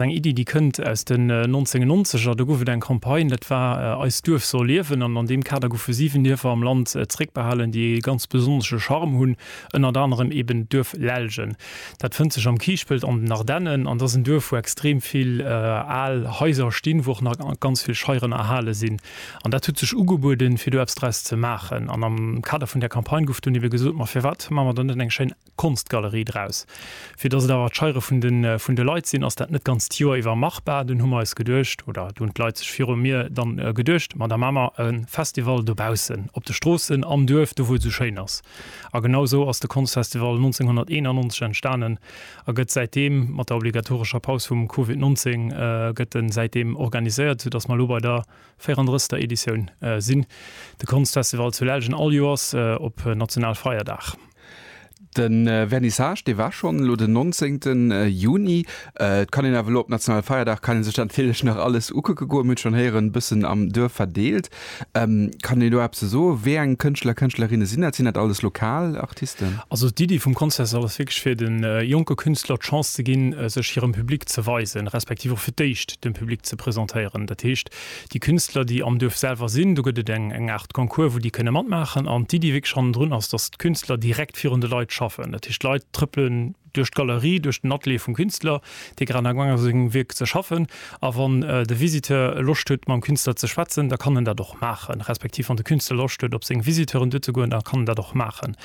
Eng Iddi, déi kënnt aus den 1990er. Do gouf et eng Campagne, dat war Eist Duerf soll liewen. An an deem Kader goufe siwen Dierfer am Land zréckbehalen, déi ee ganz besonnesche Charme hunn. Ënnert anerem eben d'Duerf Lellgen. Dat fënnt sech am Kiischpelt an den Ardennen. An dat ass en Duerf, wou extrem vill al Haiser stinn, wou och nach ganz vill Scheieren erhale sinn. An dat huet sech ugebueden, fir do eppes draus ze maachen. An am Kader vun där Campagne gouf dunn ebe gesot, Ma firwat maache mer dann net eng schéin Konstgalerie draus. Fir datt et awer d'Scheiere vun de Leit sinn, ass dat net d'ganzt Joer iwwer machbar. Dunn hu mer eis geduecht, oder do hunn d'Leit sech viru mir dann geduecht, ma da maache mer e Festival dobaussen op de Stroossen, am Duerf, do wou et esou schéin ass. A genau esou ass de Konstfestival 1991 entstanen a gëtt säitdeem, mat der obligatorescher Paus vum Covid 19, gëtt en säitdeem organiséiert, sou datt mer elo bei der 34. Editioun sinn. De Konstfestival zu Lellgen all Joers op Nationalfeierdag. De Vernissage, dee war schonn elo den 19 Juni. Et kann een awer elo op Nationalfeierdag, kann ee sech dat natierlech nach alles ukucke goen. Mir hunn et schonn héieren, e bëssen am Duerf verdeelt. Kann een do eppes ze soen, wéi eng Kënschtler, Kënschtlerinne sinn dat? Sinn dat alles lokal Artisten? Also d'Iddi vum Contest ass wierklech fir de jonke Künstler d'Chance ze ginn, sech hirem Public ze weisen, respektiv och fir d'éischt dem Public ze presentéieren. Dat heescht, déi Künstler, déi am Duerf selwer sinn, do gëtt et eng eng Aart Concours, wou déi kënne matmaachen. An d'Iddi wierklech hannendrun ass, dass d'Künstler direkt virun de Leit schaffen. Dat heescht, d'Leit trëppelen duerch d'Galerie, duerch den Atelier vum Künstler, dee grad amgaang ass u sengem Wierk ze schaffen. A wann de Visiteur Loscht huet, mam Künstler ze schwätzen, da kann en dat och maachen. Respektiv wann de Künstler Loscht huet, op seng Visiteuren duer ze goen, da kann en dat och maachen.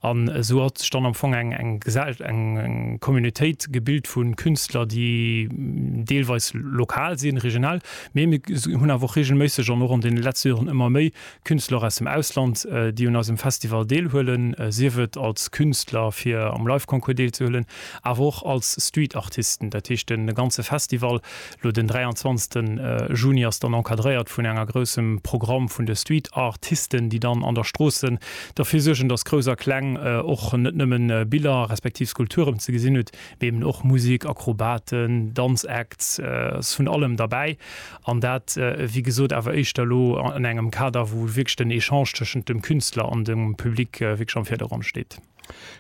An esou hat sech dann am Fong eng eng Gesell-, eng eng Communautéit gebilt vu Künstler, déi deelweis lokal sinn, regional, Mee mir hunn awer och reegelméisseg an och an deene letzte Joren ëmmer méi Künstler aus dem Ausland, déi un eisem Festival deelhuelen, sief et als Künstler fir am Live Concours deelzehuelen, awer och als Street Artisten. Dat heescht de ganze Festival, elo den 23 Juni ass dann encadréiert vun enger groussem Programm vun de Street Artisten, déi dann an der Stroossen derfir suergen, dass Grouss a Kleng och net nëmmen Biller respektiv Skulpturen ze gesinn hutt, Eben och Musik, Akrobaten, Danzacts, ass vun allem derbäi. An dat, wéi gesot, awer éischter elo an engem Kader, wou wierklech den Echange tëschent dem Künstler an dem Public wierklech am Virdergrond steet.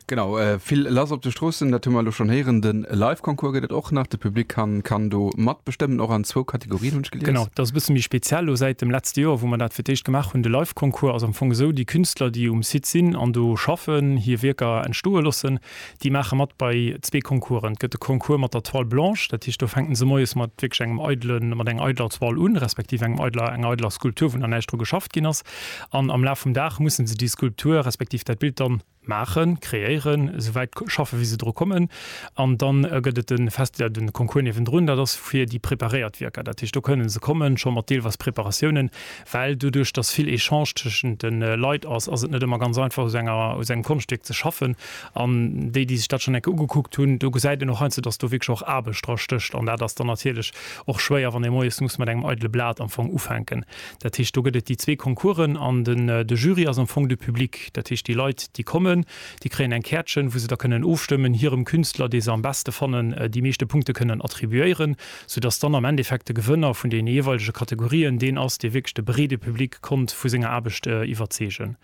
Genau, vill lass op de Stroossen, dat hu mer elo schonn héieren. De Live-Concours gëtt et och nach. De Public kann do matbestëmmen, och an zwou Kategorien, hunn ech gelies. Genau, dat ass e bësse méi speziell elo säit dem letzte Joer, wou mer dat fir d'éischt gemaach hunn. De Live-Concours ass am Fong esou, Déi Künstler, déi um Site sinn an do schaffen, hir Wierker entstoe loossen, Déi maache mat bei zwee Concoursen. Et gëtt de Concours mat der Toile blanche, dat heescht do fänken se moies mat wierklech engem eidele, mat enger eideler Toile un, respektiv engem eideler, enger eideler Skulptur, wou nach näischt dru geschafft ginn ass. An am Laf vum Dag musse se déi Skulptur, respektiv dat Bild dann maachen, kreéieren, esou wäit schaffen, wéi se dru kommen. An dann gëtt et den Fest, ja den Concours niewendrun, dat ass fir déi preparéiert Wierker. Dat heescht do kënnen se kommen scho mat deelweis Preparatiounen, well doduerch dass vill Echange tëschent de Leit ass, ass et net ëmmer ganz einfach u sou enger, u sou engem Konschtwierk ze schaffen. An déi, déi sech dat schonn eng Kéier ugekuckt hunn, do gesäit een och heiansdo, dass do wierklech och Aarbecht dra stécht. An dat ass dann natierlech och schwéier, wann ee moies muss mat engem eidele Blat am Fong ufänken. Dat heescht, do gëtt et déi zwee Concoursen an den, de Jury ass am Fong de Public. Dat heescht, déi Leit, déi kommen, déi kréien eng Käertchen, wou se da kënnen ofstëmmen, hirem Künstler, dee se am beschte fannen, déi meeschte Punkte kënnen attribuéieren. soudass dann am Endeffekt de Gewënner vun deene jeeweilege Kategorien deen ass, dee wierklech de breede Public konnt vu senger Aarbecht iwwerzeegen.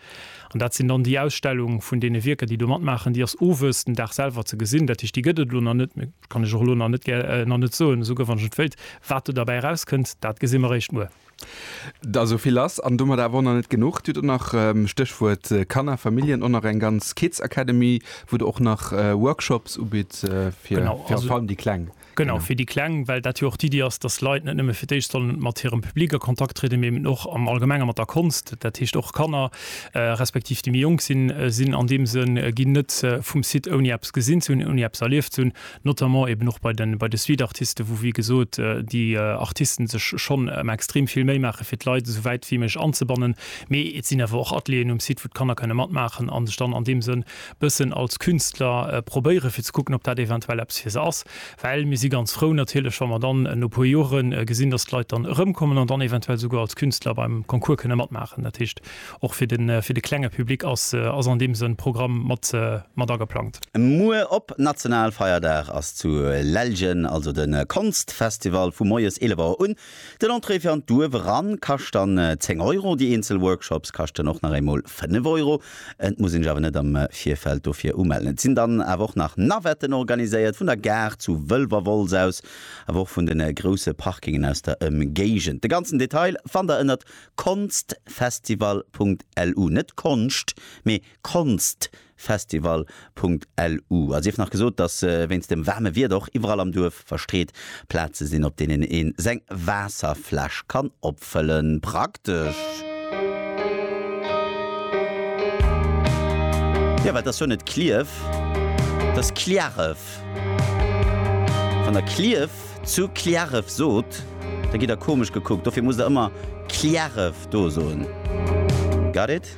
An dat sinn dann déi Ausstellung vun deene Wierker, déi do matmaachen. Déi ass owes, den Dag selwer, ze gesinn. Dat heescht, déi gëtt et elo nach net, dat kann ech och elo nach net, nach net soen, esou guer wann ech et wéilt. Wat do derbäi erauskënnt, dat gesi mer eréischt muer. Da sou vill ass an domat awer och nach net genuch. Du hutt och nach, Stéchwuert Kanner, Familljen, och nach eng ganz Kids Academy, wou Der och nach Workshops ubitt fir virallem déi Kleng. Genau, fir déi Kleng, well dat jo och d'Iddi ass, dass Leit net nëmme fir d'éischt sollen mat hirem Public a Kontakt trieden, mee eben och am Allgemenge mat der Konscht. Dat heescht och Kanner, respektiv déi méi jonk sinn, sinn an deem Sënn, ginn net vum Site ouni eppes gesinn ze hunn, ouni eppes erlieft ze hunn, notamment eben och bei den, bei de Streetartisten, wou, wéi gesot, déi Artisten sech schonn ëmmer extrem vill Méi maachen, fir d'Leit esou wäit wéi méiglech anzebannen. Mee et sinn awer och Atelieren um Site, wou d'Kanner kënne matmaachen a sech dann an deem Sënn, e bëssen als Künstler probéieren, fir ze kucken, ob dat eventuell eppes fir se ass. Well mir si ganz frou natierlech, wa mer dann no e puer Jore gesinn, dass d'Leit dann erëmkommen an dann eventuell esouguer als Künstler beim Concours kënne matmaachen. Dat heescht, och fir de, fir de klenge Public ass, ass an deem Sënn Programm mat, mat ageplangt. Muer op Nationalfeierdag ass zu Lellgen also de Konstfestival vu moies 11 Auer un Den Entrée fir an d'Duerf eran kascht dann 10 Euro, déi eenzel Workshops kaschten och nach eemol 5 Euro. Et muss een sech awer net am Virfeld dofir umellen. Et sinn dann awer och nach Navetten organiséiert, vun der Gare zu Wëlwerwolz aus, awer och vun de grousse Parkingen aus der Ëmgéigend. De ganzen Detail fannt der ënnert konztfestival.lu, net Konscht, mee Konzt Festival.lu a sief nach gesot, dass wéinst dem waarme Wieder och iwwerall am Duerf verstreet Plaze sinn, op deenen ee seng Waasserfläsch kann opfëllen. Praktesch! Jo, well et ass jo net Clierf, et ass Cliärref. Wann der Clierf zu Cliärref sot, da gitt der komesch gekuckt. Dofir musst der ëmmer Cliärref do soen. Got it?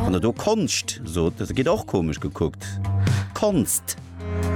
Wann der do Konscht sot, da gitt Der och komesch gekuckt. Konst!